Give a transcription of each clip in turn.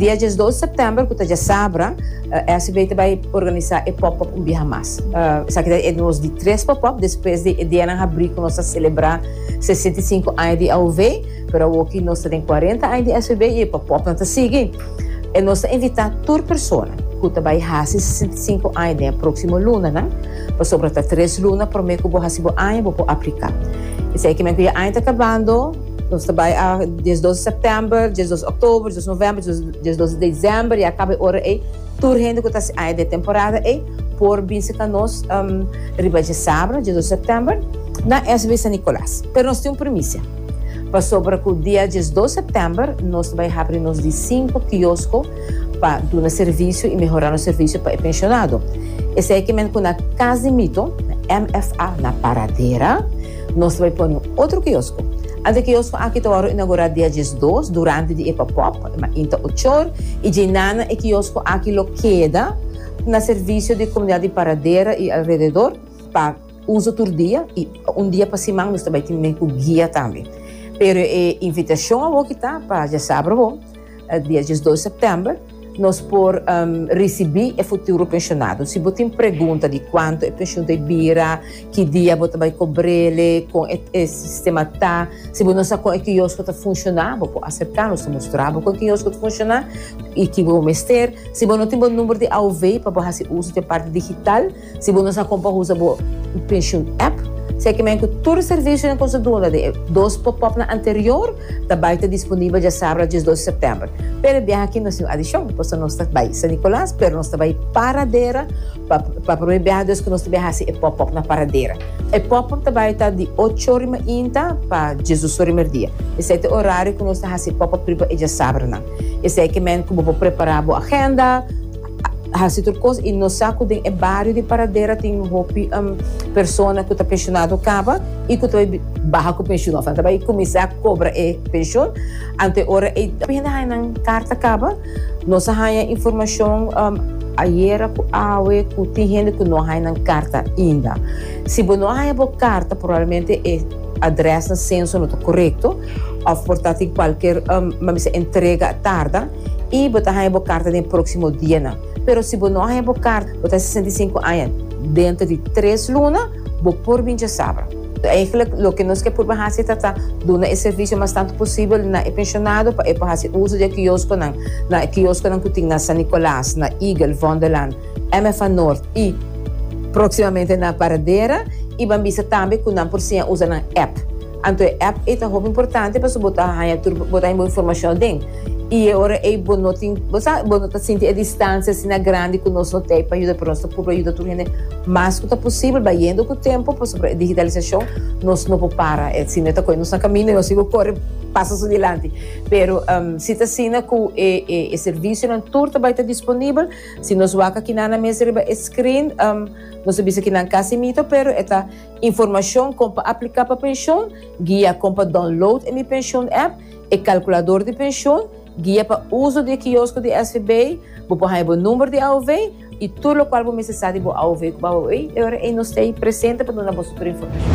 Dia diesdos sèptèmber, ku ta djasabra, SB ta bai organisá e pòp-òp un biaha mas. Esaki ta e nos di tres pòp-òp despues di e dianan habrí ku nos a selebrá sesenta i sinku aña di AOV, pero awoki nos ta den kuarenta aña di SB i e pòp-òpnan ta sigui. E nos ta invitá tur persona ku ta bai hasi sesenta i sinku aña den e próksimo lunanan, pasobra ta tres luna promé ku bo hasi bo aña bo por apliká. Esei kimen ku ya aña ta kabando. Nos ta bai a diesdos sèptèmber, diesdos òktòber, diesdos novèmber, diesdos desèmber i a kaba e ora ei tur hende ku ta hasi aña den temporada ei por bin seka nos riba dje sabra, diesdos sèptèmber, na SB San Nikolas. Pero nos tin un primisia pasobra ku dia diesdos sèptèmber nos ta bai habri nos di sinku kiosko pa duna servisio i mehorá nos servisio pa e penshonado. Esei e kimen ku na Kas di Mito, na MFA, na Paradera. Nos ta bai pone un otro kiosko. Ant e kiosko aki ta wòrdu inaugurá dia diesdos durante di e pòpòp, e mainta inta ochor, i dje nana e kiosko aki lo keda na servisio di komunidat di Paradera i alrededor pa uso tur dia i un dia pa siman nos ta bai tin mehen ku guia tambe. Pero e invitashon awor ki ta pa djasabra bo. dia diesdos september nos por um, risibi e futuro pensionado. Si bo tin pregunta di cuanto e pension ta bira, ki dia bo ta bai cobrele, con e, e sistema ta, si bo no sa con e kiosco ta funciona, bo por acercarnos ta mostrar bo con e kiosco ta funciona y ki bo mester. Si bo no tin bo number di AOV pa bo haci uso de parte digital, Si bo no sa kon pa usa bo Pensioen App, sekimen ku tur e servisionan ku nos a duna den e dos popopnan anterior ta bai ta disponibel dje sábado dies dos di sèptèmber. Pero e biaha aki no sin adishon, pasobra nos ta bai San Nikolas, pero nos ta bai Paradera pa pa promé biaha dus ku nos ta biaha hasi e pòpòp na Paradera. E pòpòp ta bai ta di ocho ora mainta pa diesdos ora merdia. Esei ta e orario ku nos ta hasi e pòpòp riba e dje sábadonan. Esei ke men ku bo por prepará bo agenda. hasi tur kos y nos sa cu den e bario di Paradera tin hopi persona cu ta pensionado caba y cu ta bai baha cu pension of nan ta bai cuminsa cobra e pension anto ora ey ta bini haya nan carta caba nos a haya informacion ayera cu awe cu tin hende cu no haya nan carta ainda si bo no a haya bo carta probablemente e address nan censo no ta corecto of por ta tin cualkier mester entrega a tarda. i bo ta haña bo karta den próksimo dianan. Pero si bo no a haña bo karta, bo ta sesenta i sinku aña, dentro di tres luna bo por bin djasabra. Eigentlek loke nos ke purba hasi ta ta duna e servisio mas tantu posibel na e penshonado pa e por hasi uso di e kioskonan, na e kioskonan ku tin na San Nikòlas, na Eagle, Vondelland, MFA Noord i próksimamente na Paradera i ban bisa tambe ku nan por siña usa nan èp. Anto e app ei ta hopi importante pasobra bo ta haña tur bo ta haña bo informashon aden. I e ora ei bo no tin, bo sa, bo no ta sinti e distansia asina grandi ku nos no tei pa yuda, pero nos ta purba yuda tur hende mas ku ta posibel, bayendo ku tempu pasobra e digitalisashon nos no por para e asina e ta kohe nos na kaminda i nos igual kore pasa su dilanti. Pero si ta asina ku e servisionan tur ta bai ta disponibel, si nos wak aki nan na mes riba e screen nos ta bisa ki nan kasi mito pero e ta. Informashon kon pa apliká pa penshon, guia kon pa download e Mi Penshon app, e kalkulador di penshon, guia pa uso di e kiosko di SVB, bo por haña bo number di AOV i tur lokual bo mester sa di bo AOV ku bo AOV i ora ei nos ta ei presente pa duna boso tur informashon.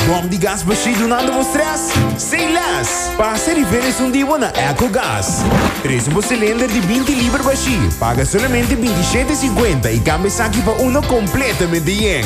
Bòm di gas bashí dunando bo strès? Sei lès! Pasa e riferens un di bo na Echo Gas. Trese bo silender di binti liber bashí, paga solamente binti shete i sinkuenta i kambia esaki pa uno kompletamente yen.